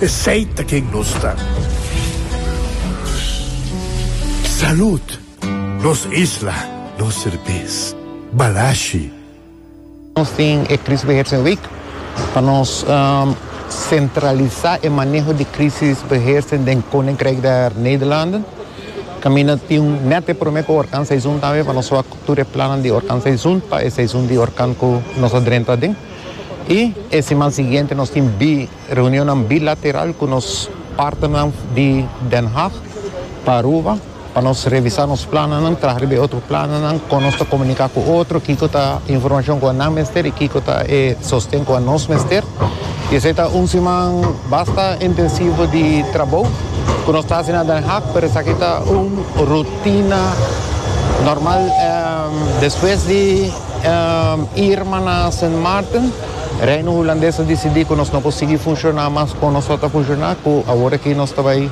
Esey ta ken nos ta. Salud! Nos isla, nos serbes. Balashi. Nos tin e Krisbeheersingweek pa nos sentralisa e maneho di krisisbeheersing den Koninkrijk der Nederlanden. Kaminda tin net e prome ku orkanseizoen tambe pa nos wak tur e plannan di orkanseizoen pa e seizoen di orkan ku nos a drenta aden. I e siman siguiente nos tin bi. Reunionnan bilateral cu nos partnernan di Den Haag pa Aruba pa nos revisa nos plannan, traha riba e otro plannan, con nos ta comunica cu otro, kico ta e informacion cu nan mester y kico ta e sosten cu nos mester. Y esey ta un siman basta intensivo di trabou cu nos ta haci na Den Haag, pero esaki ta un rutina normal. Despues di Irma na Sint Maarten. Reino Hulandes a disidí ku nos no por sigui funshoná mas kon nosot a funshoná ku awor aki nos ta bai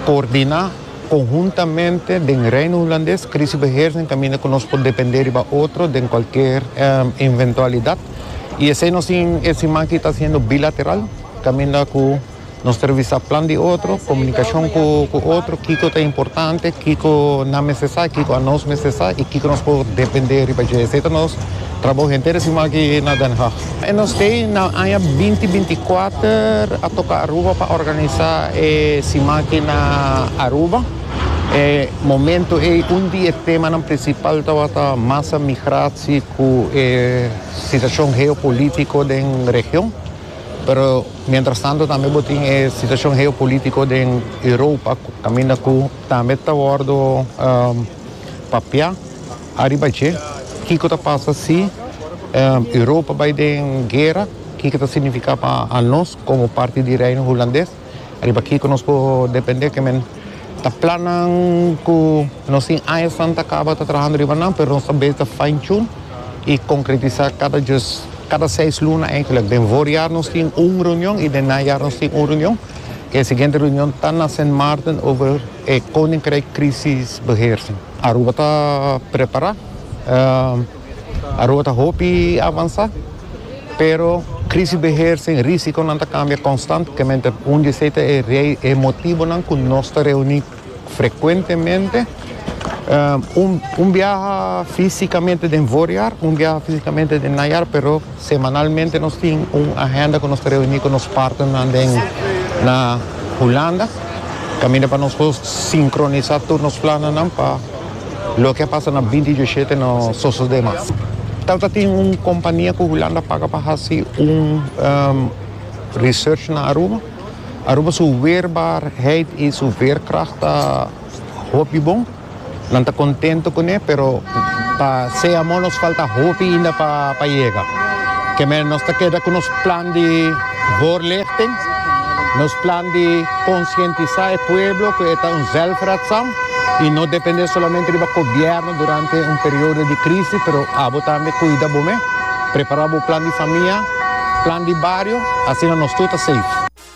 koordiná konhuntamente den Reino Hulandes Krisibeheersing kaminda ku nos por dependé riba otro den kualker inventualidat i esei nos tin e siman aki ta hasiendo bilateral kaminda ku Nos ta revisa plan di otro, komunikashon ku ku otro, kiko ta importante, kiko nan mester sa, kiko anos mester sa i kiko nos por dependé riba dje. Esei ta nos trabou henter siman aki na Den Haag. E nos ke na aña binti binti kuater a toka Aruba pa organisá e siman aki na Aruba. E momentu ei un di e temanan prinsipal tabata masa migratie ku e situashon geopolítiko den region. Pero mientras tanto tambe bo tin e situacion geopolitico den Europa caminda cu tambe ta wordo papia ariba dje. Kico ta pasa si Europa bay den guera? Kico ta significa pa anos como parti di Reino Hulandes? Riba kiko nos por depende ke men ta plannan ku nos tin aña san ta kaba ta trahando riba nan, pero nos ta beta fine tune i konkretisá kada djus, kada seis luna eigentlek. Den voorjaar nos tin un reunion i den najaar nos tin un reunion. E siguiente reunion ta na Sint Maarten over e Koninkrijk Krisisbeheersing. Aruba ta prepará. Aruba ta hopi avansá, pero Krisisbeheer sin Risikonan ta kambia konstantemente. Un di esei ta e motibonan ku nos ta reuní frekuentemente, un biaha físikamente den voorjaar, un biaha físikamente den najaar, pero. Semanalmente nos tin un agenda cu nos ta reuni cu nos partnernan den na Hulanda caminda pa nos por sincronisa tur nos plannan pa loke a pasa na binti diesiete no sosode mas. Tal ta tin un compania cu Hulanda paga pa haci un research na Aruba. Aruba su weerbaarheid y su veerkracht ta hopi bon. Nan ta contento cune, pero pa se amo nos falta hopi ainda pa yega. Keme nos ta keda cu nos plan di voorlichting, nos plan di conscientisa e pueblo cu e ta un zelfredzaam y no depende solamente riba gobierno durante un periodo di crisis, pero abo tambe cuida bo mes, prepara bo plan di famia, plan di bario, asina nos tur ta safe.